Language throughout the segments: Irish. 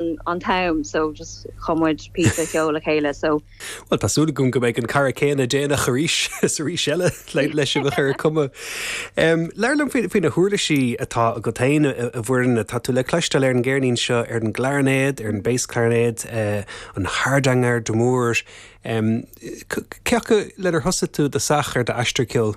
an t-am so just chuir muid píosa ceoil le chéile so. Bhuel tá súil agam go mbeidh an cara céanna déanach arís is arís eile le sibh a chur ag cumadh. Labhair liom faoi na huirlisí atá agat féin a Mhuirne. Tá tú le cloisteáil ar an gceirnín seo ar an gclarinéad, ar an bass clarinet, an hardanger d'amore. Cé acu lenar thosaigh tú i dtosach ar d'aistear ceoil?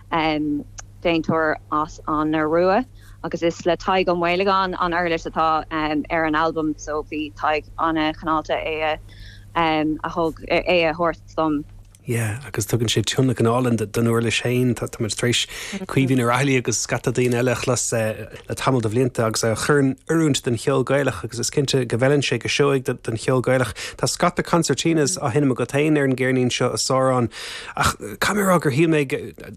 An déantóir as an Iorua agus is le Tadhg Ó Maolagáin an uirlis atá ar an albam so bhí Tadhg an-chineálta é a thug, é a thabhairt dom. Yeah agus tugann sé tionlacan álainn don uirlis féin. Tá muid tar éis Caoimhín Ó Raghallaigh agus scata daoine eile a chlos le tamall de bhlianta agus a chur in oiriúint don cheol Gaelach agus is cinnte go bhfeileann sé go seoigh don cheol Gaelach. Tá scata concertinas á sheinm agat féin ar an gceirnín seo a Sháráin. Ach caithfidh mé a rá gur shíl mé,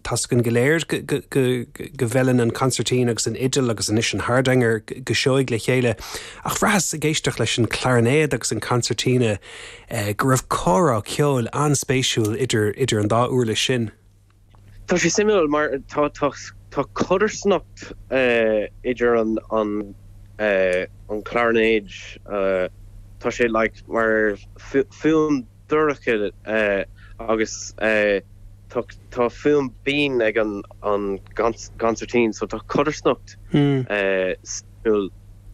tá's againn go léir, go bhfeileann an concertina agus an fhidil agus anois an hardanger go seoigh le chéile. Ach bhraitheas, ag éisteacht leis an gclairinéad agus an concertina, go raibh comhrá ceoil an-spéisiúil idir an dá uirlis sin. Tá sé suimiúil mar tá codarsnacht idir an, an chlairinéid, tá sé like mar fuaim. dorcha agus tá fuaim binn ag an gcansairtín so tá codarsnacht suimiúil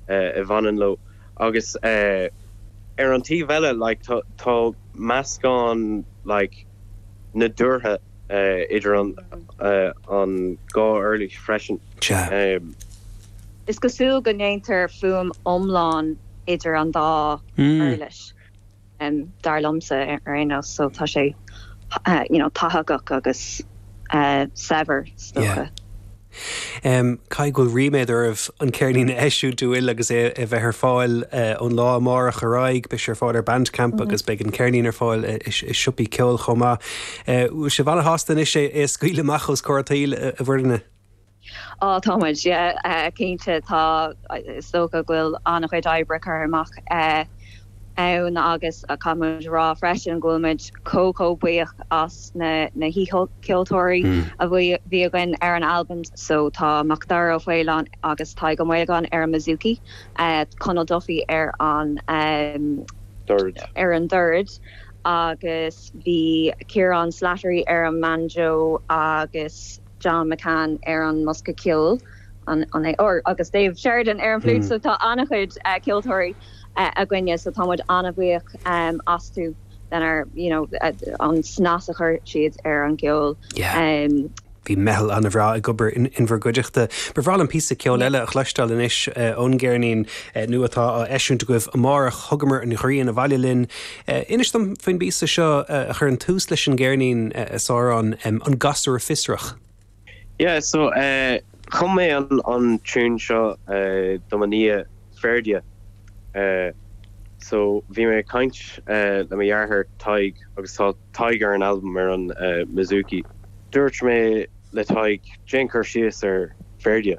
a bhaineann leo agus ar an taobh eile like tá meascán like nadúrtha idir an dhá uirlis freisin. Is cosúil go ndéantar fuaim iomlán idir an dá uirlis. dar liomsa ar aon nós, so tá sé you know tathagach agus saibhir is dócha. Yeah. Caithfidh go bhfuil ríméad oraibh an ceirnín a eisiúint bhuel agus é a bheith ar fáil ón lá amárach ar aghaidh, beidh sé ar fáil ar Bandcamp agus beidh an ceirnín ar fáil i siopaí ceoil chomh maith. Bhfuil sibh ana-shásta anois é a scaoileadh amach os comhair an tsaoil, a Mhuirne? Á, tá muid, yeah, cinnte, tá, is dócha go bhfuil an-chuid oibre curtha amach ann agus caithfidh muid a rá freisin go bhfuil muid chomh, chomh buíoch as na, na haoicheoltóirí a bhí againn ar an albam so tá Macdara Ó Faoláin agus Tadhg Ó Maolagáin ar an mbouzouki, Conal Duffy ar an, dord, ar an dord agus bhí Ciarán Slattery ar an mbanjo agus. John McCann ar an mbosca ceoil, an é R, agus Dave Sheridan ar an bhfliúit so tá an-chuid ceoltóirí againne so tá muid an-bhuíoch astu lenár, you know, an snas a chuir siad ar an gceol. Yeah. Bhí meitheal an-bhreá ag obair in bhur gcuideachta. Ba bhreá liom píosa ceoil eile a chloisteáil anois ón gceirnín nua atá á eisiúint agaibh amárach, Thugamar an Ghrian Abhaile Linn. Inis dom faoin bpíosa seo a chuireann tús leis an gceirnín, a Sárán, An Gasúr Fiosrach. Yeah so chum mé an tiún seo do mo nia Ferdia so bhí mé ag caint le mo dheartháir Tadhg agus tá Tadhg ar an albam ar an mbouzouki. Dúirt mé le Tadhg déan cur síos ar Ferdia.